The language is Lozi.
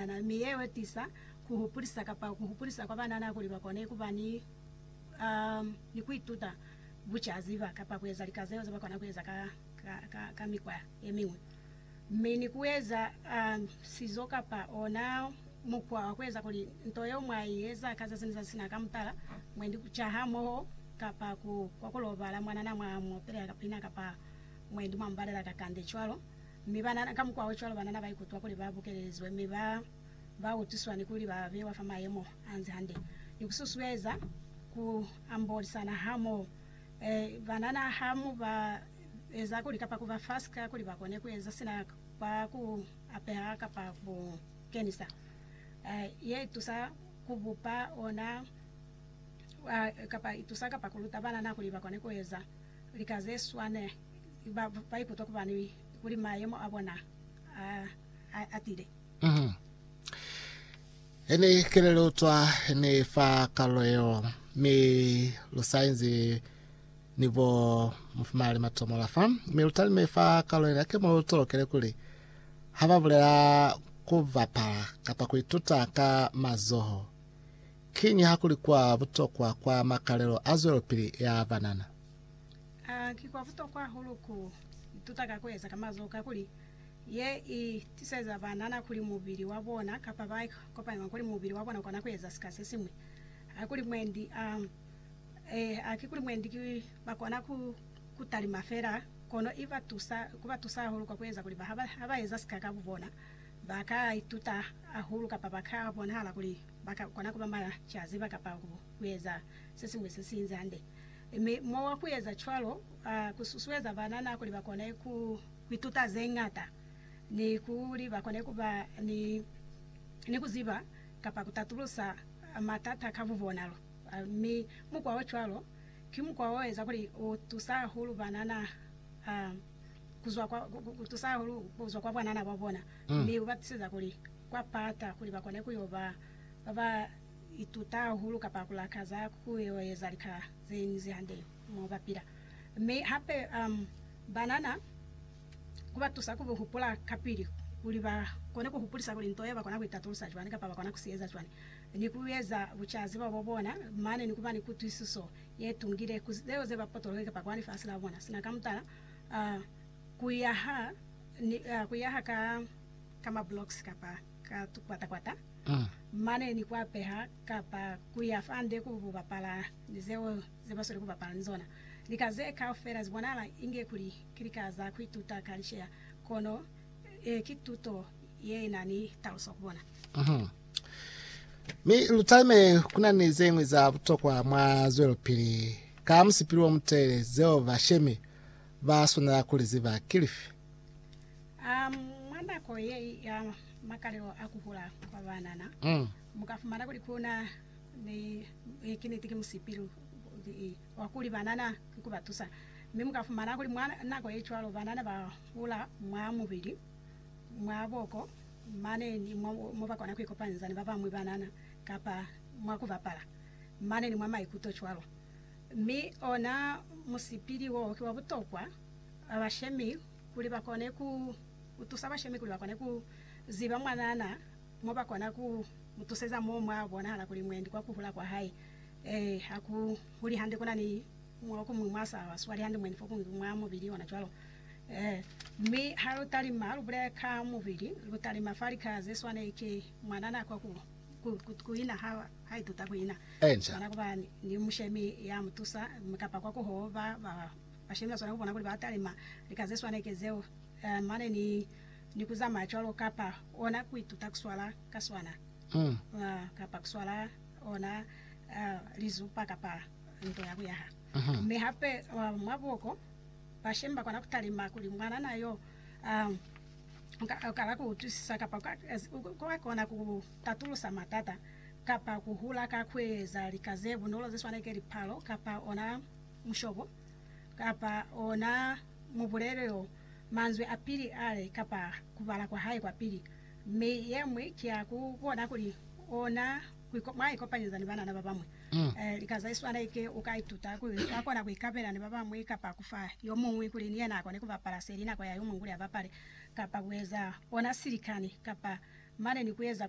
Banana, mi yeo itisa kuhupulisa kapa kuhupulisa kwa banana kuli bakone kuba ni ni kuituta bucaziba kapa kueza lika zeo zebakona kueza ka ka ka mikwa yemiñwi, mi ni kueza sizo kapa ona mukwa wa kueza kuli nto yeo mwa ieza ka zazi ni zazi sina ka mutala, mwendi kuca hamoho kapa ku kwa kulobala mwanana mwa muopelela ka pina kapa mwendi mwa mubalela kakande cwalo. Mi banana, kamukwaocwalo, banana baikutwa kuli ba bukelelizwe mi ba ba utuswa ni kuli ba bewa fa mayemo anzi hande. Ni kususueza ku ambolisana hamoho. E, banana ha mu ba eza kuli kapa kuba fasi ka kuli ba kone kueza sina kwa ku apeha kapa ku kenisa, e, ye itusa ku bupa ona kapa itusa kapa kuluta banana kuli ba kone kueza lika ze swane. ba ba ikutwa kubani kuli mayemo a bona a a atile. Mhm. Ene kele lu utwa ni fa kalulo yeo, mi lu sa inzi ni bo mufumali matomo la fa. Mi lu talime fa kalulo yena ke mo lu tolokele kuli ha ba bulela ku bapala kapa ku ituta ka mazoho, kiñi ha kuli kwa butokwa kwa makalelo a zwelopili ya banana. A Ki kwa butokwa hahulu ku ituta ka ku eza ka mazoho kakuli ye i tiseza banana kuli mubili wa bona kapa ba kopanywa kuli mubili wa bona u kona ku eza sika se siñwi. A Kuli mwendi a eh, a ki kuli mwendi ki ba kona ku ku talima fela, kono i ba tusa, ku ba tusa hahulu kwa ku eza kuli ba ha ba, ha ba eza sika ka bubona, ba ka ituta hahulu kapa ba ka bonahala kuli ba ka kona ku ba macaziba kapa ku eza sesiñwi sesiinzi hande, mi mowa kueza cwalo kususueza banana kuli bakone kuituta zeñata ni kuli bakone kuba ni kuziba kapa kutatulusa matata ka bubonalo. Mi mukwa ocwalo ki mukwa oeza kuli utusa hahulu banana kuzwa kwa bwanana bwabona mi ubatiseza kuli kwapata kuli bakone kuyoba ba ba ituta hahulu kapa ku lakaza ku yo eza lika ze ñwi ze hande mo ba pila. Mi hape um banana ku ba tusa ku hupula kapili kuli ba kone ku hupulisa kuli nto yeo ba kona ku itatulusa cwani kapa ba kona ku si eza cwani ni ku eza bucaziba bo bona mane ni ku ba ni kutwisiso ye tungile ku zeo ze ba potoloke kapa kwa lifasi la bona sina. Ka mutala, uh ku yaha ni uh ku yaha ka ka ma blocks kapa ka kwata-kwata mane ni ku apeha kapa ku ya fande ku bapala ni zeo ze ba sweli ku bapala ni zona. Lika ze kaufela zi bonahala inge kuli ki lika za ku ituta ka lisheya, kono ki tuto ye na ni taluso ku bona. Mi lu talime ku na ni ze ñwi za butokwa mwa zwelopili ka musipili wo mutelele zeo bashemi ba swanela ku li ziba. Ki lifi? A Mwa nako ye ya makalelo a ku hula kwa banana, mu ka fumana kuli ku na ni ee, ki niti, ki musipilu wa kuli banana ki ku ba tusa. Mi mu ka fumana kuli mwa nako ye cwalo banana ba hula mwa mubili, mwa boko, mane ni mwa mo ba kona ku ikopanyiza ni ba bañwi banana kapa mwa ku bapala, mane ni mwa maikuto cwalo. Mi ona musipili wo ki wa butokwa, ba bashemi kuli ba kone ku tusa bashemi kuli ba kone ku ziba mwanana mo ba kona ku mu tuseza mo mwa bonahala kuli mwendi kwa ku hula kwa hae ee ha ku huli hande ku na ni mwa ku muñwi mwa sa swali hande mwendi fo kuñwi mwa mubili ona cwalo ee. Mi ha lu talima lu bulela ka mubili lu talima fa lika ze swane ki mwanana kwa ku ku ku ina ha ha ituta ku ina swana ku ba ni mushemi ya mu tusa kapa kwa ku hoo ba ba Bashemi baswanela kubona kuli batalima lika zeswanike zeo mane ni ni kuzamaya cwalo kapa ona kuituta kuswala kaswana kapa kuswala ona lizupa kapa nto ya kuyaha. Mi hape mwa buko, bashemi bakona kutalima kuli mwanana yo ukala kuutwisisa kapa ukakona kutatulusa matata kapa kuhula ka kueza lika zebunolo zeswanike lipalo kapa ona mushobo, kapa ona mubulelo yo manzwi a pili ale kapa kubala kwa hae kwa pili. Mi yemwi ki ya ku bona kuli ona mwa ikopanyeza ni banana babamwi. E, lika ze swana iki uka ituta kuli uka kona ku ikabela ni babamwi kapa kufa yomuñwi kuli ni yena akone kubapala seli nako ya yomuñwi kuli abapale, kapa kueza ona silikani, kapa mane ni kueza kuli